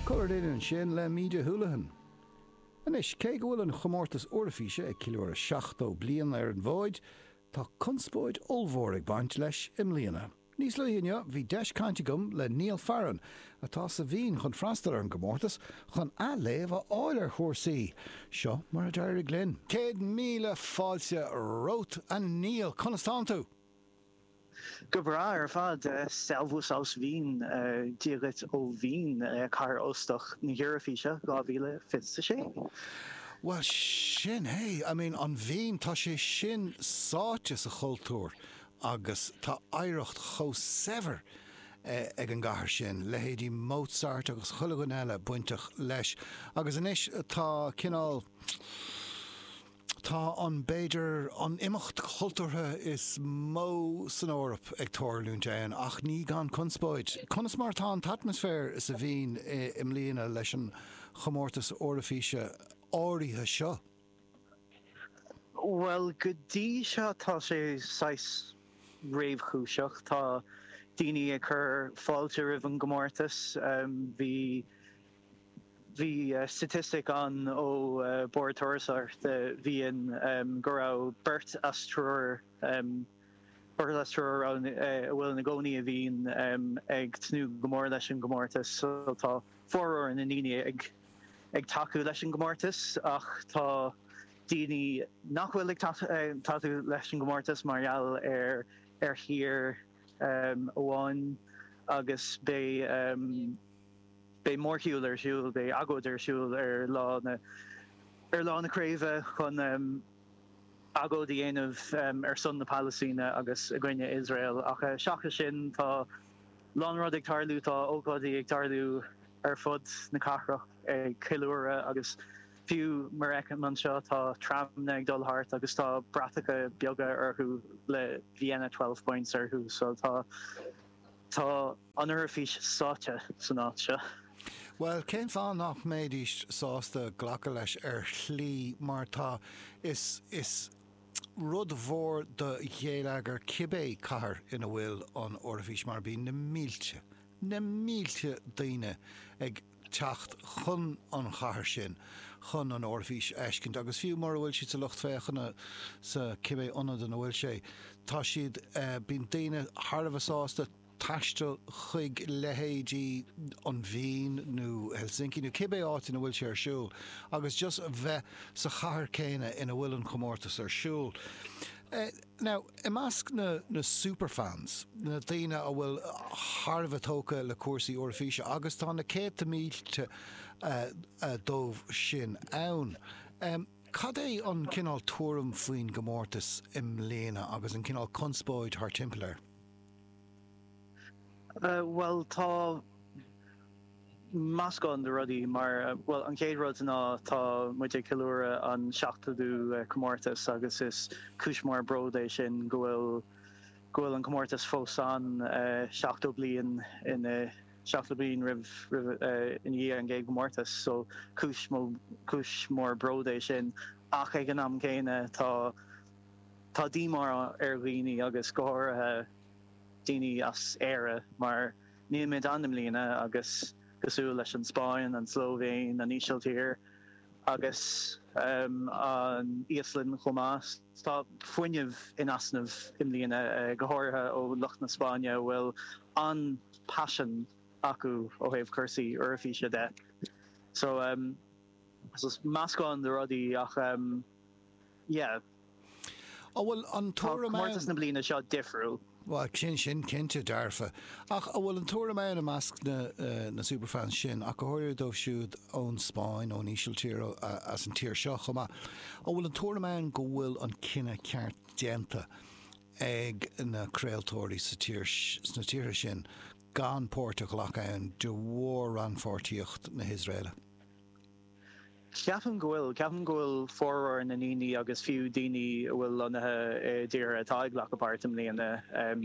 Comhrá ansin le Méabh Houlihan. Anois, cé go bhfuil an Chomórtas Eoraifíse ag ceiliúradh 70 bliain ar an bhfóid, tá conspóid ollmhór ag baint leis i mbliana. Níos luaithe inniu, bhí deis cainte agam le Niall Farren, atá sa Vín chun freastal ar an gcomórtas, chun athléamh a fháil ar chúrsaí. Seo mar a d'éirigh linn. Céad míle fáilte romhat, a Néill. Conas tánn tú? Go breá ar fad. Servus aus Wien, Dia dhuit ó Vín, cathair óstach na hEoraifíse 2026. Bhuel, sin é. I mean, an Vín, tá sé sin sáite sa chultúr agus tá oidhreacht chomh saibhir ag an gcathair sin, leithéidí Mozart agus chuile dhuine eile bainteach leis. Agus anois tá cineál, Tá an, b'fhéidir, an imeacht cultúrtha is mó san Eoraip ag tarlúint ann, ach ní gan conspóid. Conas mar atá an t-atmaisféar sa Vín i mbliana leis an chomórtas Eoraifíse áirithe seo? Bhuel, go dtí seo tá sé saghas réamhchúiseach. Tá daoine ag cur fáilte roimh an gcomórtas. Bhí Bhí staitistic ann ó Bord Turasóireachta Vín go raibh beirt as triúr, beirt as triúr a bhfuil ina gcónaí i Vín ag tnúth go mór leis an gcomórtas so tá formhór na ndaoine ag tacú leis an gcomórtas ach tá daoine nach bhfuil ag tacú leis an gcomórtas mar gheall ar thír amháin agus beidh Beidh mórshiúl ar siúl, beidh agóid ar siúl ar lá na, ar lá na craoibhe chun agóid a dhéanamh ar son na Palaistíne agus i gcoinne Iosrael ach seachas sin tá a lán rud ag tarlú, tá ócáidí ag tarlú ar fud na cathrach ag ceiliúradh agus fiú mar a fheicim anseo tá tramanna ag dul thart agus tá bratacha beaga orthu le Vienna Twelve Points orthu so tá. Tá an Eoraifís sáite san áit seo. Bhuel, cén fáth nach mbéidís sásta glacadh leis ar shlí mar tá, is is rud mhór do ghéilleagar cibé cathair ina bhfuil an Eoraifís mar bíonn na mílte, na mílte daoine ag teacht chun an chathair sin chun an Eoraifís a fheiscint agus fiú mura bhfuil siad sa lucht féachana sa cibé ionad ina bhfuil sé, tá siad, bíonn daoine thar a bheith sásta taisteal chuig leithéidí an Vín nó Helsinki nó cibé áit ina bhfuil sé ar siúl agus just a bheith sa chathair céanna ina bhfuil an comórtas ar siúl. Now, i measc na na superfans, na daoine a bhfuil thar a bheith tógtha le cúrsaí Eoraifíse, agus tá na céadta mílte díobh sin ann, cad é an cineál tuairim faoin gcomórtas i mbliana agus an cineál conspóid thart timpeall air? Bhuel, tá. meascán de rudaí mar, bhuel, an chéad rud ná tá muid ag ceiliúradh an tseachtódú comórtas agus is cúis mór bród é sin go bhfuil, go bhfuil an comórtas fós ann seachtó bliain ina, seachtó bliain roimh, roimh, ina dhiaidh an gcéad gcomórtas so cúis mó, cúis mór bród é sin ach ag an am céanna tá, tá díomá ar dhaoine agus go háirithe daoine as Éire mar, Níl muid ann i mbliana agus cosúil leis an Spáinn, an tSlóivéin, an Ísiltír agus an Íoslainn chomh maith, tá fuinneamh in easnamh i mbliana, go háirithe ó lucht na Spáinne a bhfuil an-paisean acu ó thaobh cúrsaí Eoraifíse de. So, meascán de rudaí ach. Yeah. An bhfuil an tuairim ann? Tá comórtas na bliana seo difriúil. Bhuel, sin sin cinnte dearfa. Ach an bhfuil an tuairim ann i measc na, uh, na superfans sin, ach go háirithe dóibh siúd ón Spáinn, ón Ísiltír, as an tír seo chomh maith, an bhfuil an tuairim ann go bhfuil an cinneadh ceart déanta ag na craoltóirí sa tír, sna tíortha sin gan páirt a ghlacadh ann de bharr rannpháirtíocht na hIosraeile? Ceapaim go bhfuil. Ceapaim go bhfuil formhór na ndaoine agus fiú daoine a bhfuil lonnaithe i dtíortha atá ag glacadh páirt i mbliana,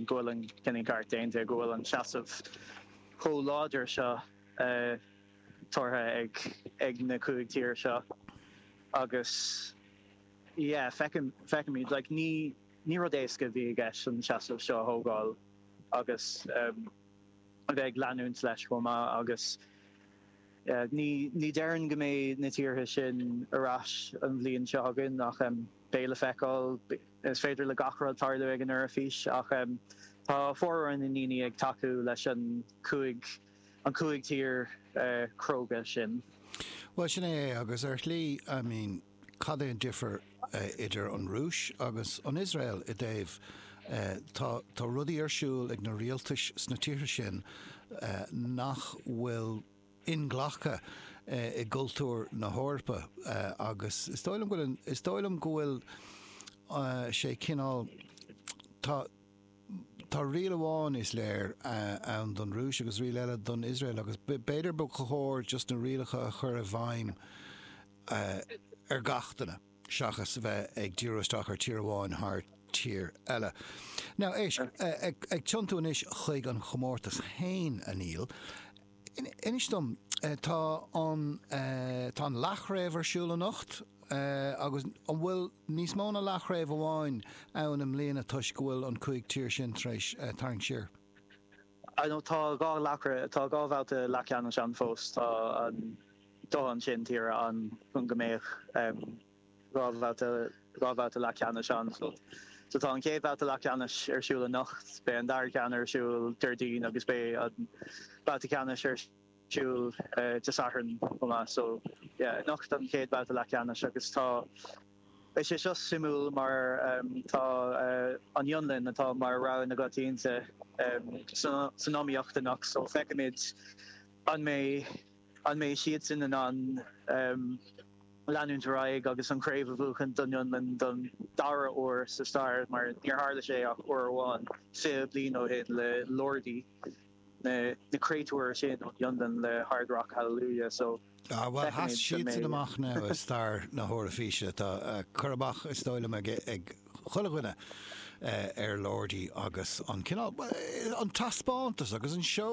go bhfuil an cinneadh ceart déanta, go bhfuil an tseasamh chomh láidir seo tógtha ag na cúig tír seo agus yeah, feicim, feicimid, like ní, ní rud éasca a bhí i gceist an tseasamh seo a thógáil agus a bheith ag leanúint leis chomh maith agus. Ní déarfainn go mbeidh na tíortha sin ar ais an bhliain seo chugainn ach beidh le feiceáil. Is féidir le gach rud tarlú ag an Eoraifís ach tá formhór na ndaoine ag tacú leis an cúig, an cúig tír chróga sin. Bhuel, sin é é agus ar shlí, I mean. Cad é an difear idir an Rúis agus an Iosrael i dtaobh, tá, tá rudaí ar siúl ag na rialtais sna tíortha sin nach bhfuil inghlactha i gcultúr na hEorpa agus is dóigh liom go bhfuil, is dóigh liom go bhfuil sé cineál, tá, tá riail amháin is léir ann don Rúis agus riail eile don Iosrael agus b'fhéidir ba chóir just na rialacha a chur i bhfeidhm, ar gach duine seachas a bheith ag díriú isteach ar tír amháin thar tír eile. Now, éist, ag tiontú anois chuig an chomórtas féin, a Neil, inis dom, tá an, tá an leathchraobh ar siúl anocht, agus an bhfuil níos mó ná leathchraobh amháin ann i mbliana toisc go bhfuil an cúig tír sin tar éis tarraingt siar? I know, tá dhá leathchraobh, tá dhá bhabhta leathcheannais ann fós, tá an, Dóthain tíortha ann chun go mbeadh dhá bhabhta, dhá bhabhta leathcheannais ann. So tá an chéad bhabhta leathcheannais ar siúl anocht, beidh an dara ceann ar siúl Déardaoin agus beidh an babhta ceannais ar siúl Dé Sathairn chomh maith. So yeah, anocht an chéad bhabhta leathcheannais agus tá, beidh sé seo suimiúil mar tá an Fhionlainn atá mar rogha na coitiantachta san iomaíocht anocht so feicfimid an mbeidh, An mbeidh siadsan in ann leanúint ar aghaidh agus an chraobh a bhuachaint don Fhionlainn don dara huair sa stair, mar níor tharla sé ach uair amháin fiche bliain ó shin le Lordi, na créatúir sin ón Fhionlainn le Hard Rock Hallelujah so. Ah, bhuel, sheas siadsan amach now i stair na hEoraifíse. Tá cur amach, is dóigh liom, ag chuile dhuine ar Lordi agus an cineál, bhuel, an taispeántas agus an seó